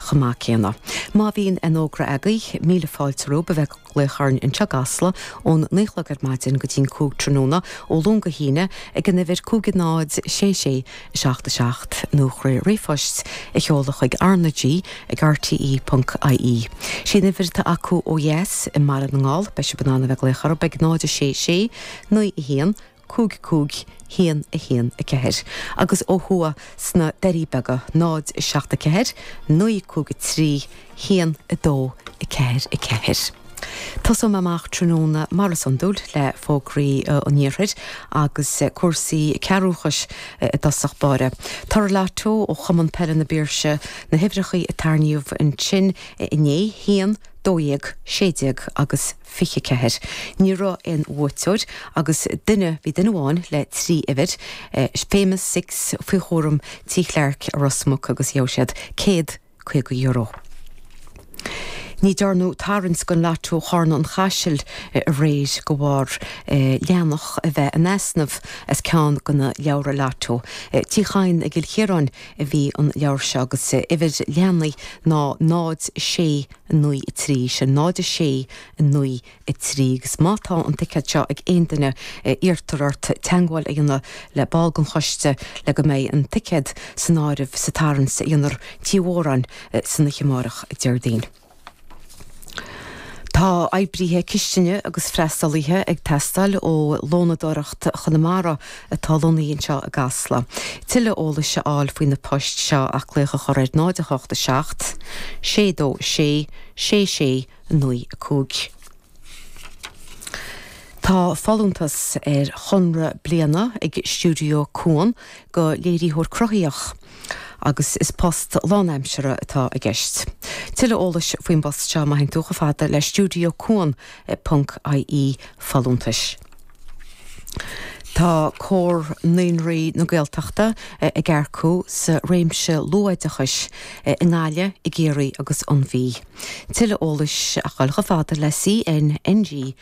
chomh maith céanna. Má bhíonn aon fhógra agaibh, míle fáilte romhaibh a bheith ag glaoch orainn anseo i gCasla ón naoi chlog ar maidin go dtí an cúig tráthnóna, ó Luan go hAoine, ag an uimhir 506677 nó thrí ríomhphost a sheoladh chuig R na G ag RTÉ.ie. Sí an uimhir atá acu ó dheas, i mBaile na nGall. Beidh sibh in ann a bheith glaoch orthu ag 0 6 6 9 1 cúig cúig haon a haon a ceathair agus ó thuaidh sna Doirí Beaga, náid a seacht a ceathair naoi cúig a trí haon a dó a ceathair a ceathair. Tosóidh mé amach tráthnóna mar is iondúil le fógraí an Iarthair agus cúrsaí cearrbhachais i dtosach báire. Toradh Lotto ó Chumann Peile na bPiarsaigh na huimhreachaí a tairníodh ansin inné, haon, dó dhéag, sé déag agus. 24. Ní raibh aon bhuaiteoir agus duine, bhí duine amháin le trí uimhir, Famous Six, faoi chúram Tí Chlarke i Ros Muc agus gheobhaidh siad €150. Ní dearnadh tarraingt den Lotto Charna an Chaisil aréir de bharr leathanach a bheith in easnamh as ceann de na leabhra Lotto. Tí Chadhain i gCill Chiaráin a bhí an leabhar seo agus uimhir leathanaigh ná 0, 6, 9 3 sin 0 6 9 3 Agus má tá an ticéad seo ag aon duine, iarrtar ort teagmháil a dhéanamh le ball den choiste le go mbeidh an ticéad san áireamh sa tarraingt a dhéanfar Tí Mhóráin san oíche amáireach Déardaoin. Tá oibrithe cistine agus freastalaithe ag teastáil ó Lónadóireacht Chonamara atá lonnaithe anseo i gCasla. Tuilleadh eolais a fháil faoi na poist seo ach glaoch a chur ar 087 626 6695. Tá folúntas ar chonradh bliana ag Stiúideo Cuan go Léiritheoir Cruthaíoch agus is post lánaimseartha atá i gceist. Tuilleadh eolais faoin bpost seo má théann tú chomh fada le stiúideo cuan ponc ie folúntais. Tá Comhar Naíonraí na Gaeltachta ag earcú sa réimse luathoideachais i nGaillimh, i gCiarraí agus an Mhí. Tuilleadh eolais ach a ghoil chomh fada le cnng.ie.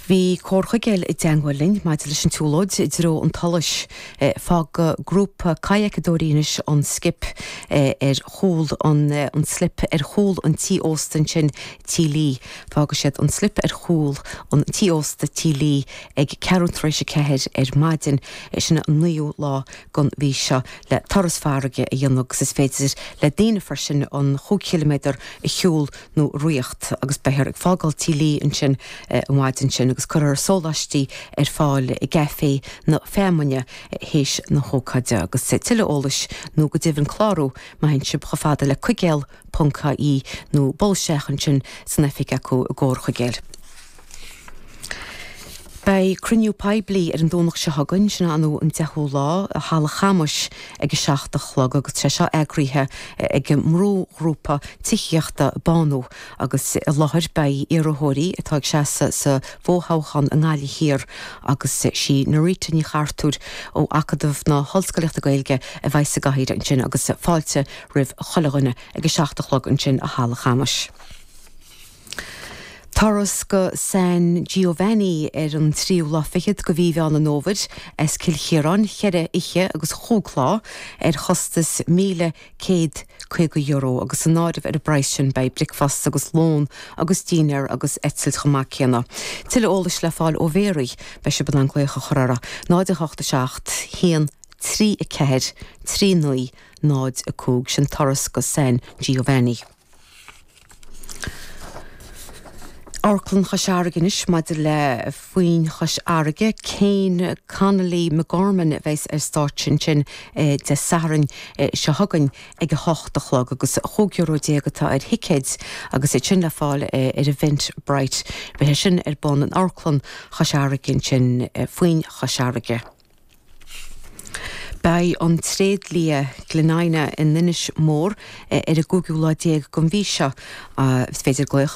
Bhí Comhar Chuigéal i dteangmháil linn maidir leis an tsiúlóid i dtreo an tsolais. Fágfaidh grúpa kayakadóirí anois an Skip ar. chúl an an slip ar chúl an tí ósta ansin Tí Lee. Fágfaidh siad an slip ar chúl an tí ósta Tí Lee ag ceathrú tar éis a ceathair ar maidin. Sin an naoú lá gon mhí seo le turas farraige a dhéanamh agus is féidir le daoine freisin an chúig chiliméadar a shiúl nó a ritheacht agus beifear ag fágáil Tí Lee ansin an mhaidin sin agus cuirfear sólaistí ar fáil i gCafé na Feamainne. théis na hócáide, agus tuilleadh eolais, nó go deimhin clárú, má théann sibh chomh fada le Cuigéal, ponc, ie nó bualadh isteach ansin san oifig acu i gComhar Chuigéil. Beidh cruinniú poiblí ar an Domhnach seo chugainn, sin an 10ú lá, i Halla Chamuis ag a seacht a chlog agus sé seo eagraithe ag an mbrúghrúpa tithíochta Bánú. agus i láthair beidh iarrthóirí atá ag seasamh sa bhfothoghchán i nGaillimh Thiar agus sí Norita Ní Chartúir ó Acadamh na hOllscolaíochta Gaeilge a bheidh sa gcathaoir ansin agus fáilte roimh chuile dhuine ag a seacht a chlog ansin i Halla Chamais. Turas go San Giovanni ar an tríú lá fichead de mhí Mheán an Fhómhair as Cill Chiaráin, cheithre oíche agus chúig lá ar chostas míle €150 agus san áireamh ar an bpraghas sin beidh bricfeast agus lón agus dinnéar agus eitilt chomh maith céanna. Tuilleadh eolais le fáil ó Mhéaraí, beidh sibh in ann glaoch a chur uirthi, 087 134 3905 sin turas go San Giovanni. Amharclann Chois Fharraige anois maidir le Foinn Chois Fharraige. Keane Connolly McGorman a bheas ar stáitse ansin Dé Sathairn seo chugainn ag a hocht a chlog agus chúig euro déag atá ar thicéid agus iad sin le fáil ar Eventbrite. Beidh sé sin ar bun in Amharclann Chois Fharraige ansin, Foinn Chois Fharraige. Beidh an tréidlia Glenina in Inis Mór ar an gcúigiú lá déag den mhí seo. Is féidir glaoch a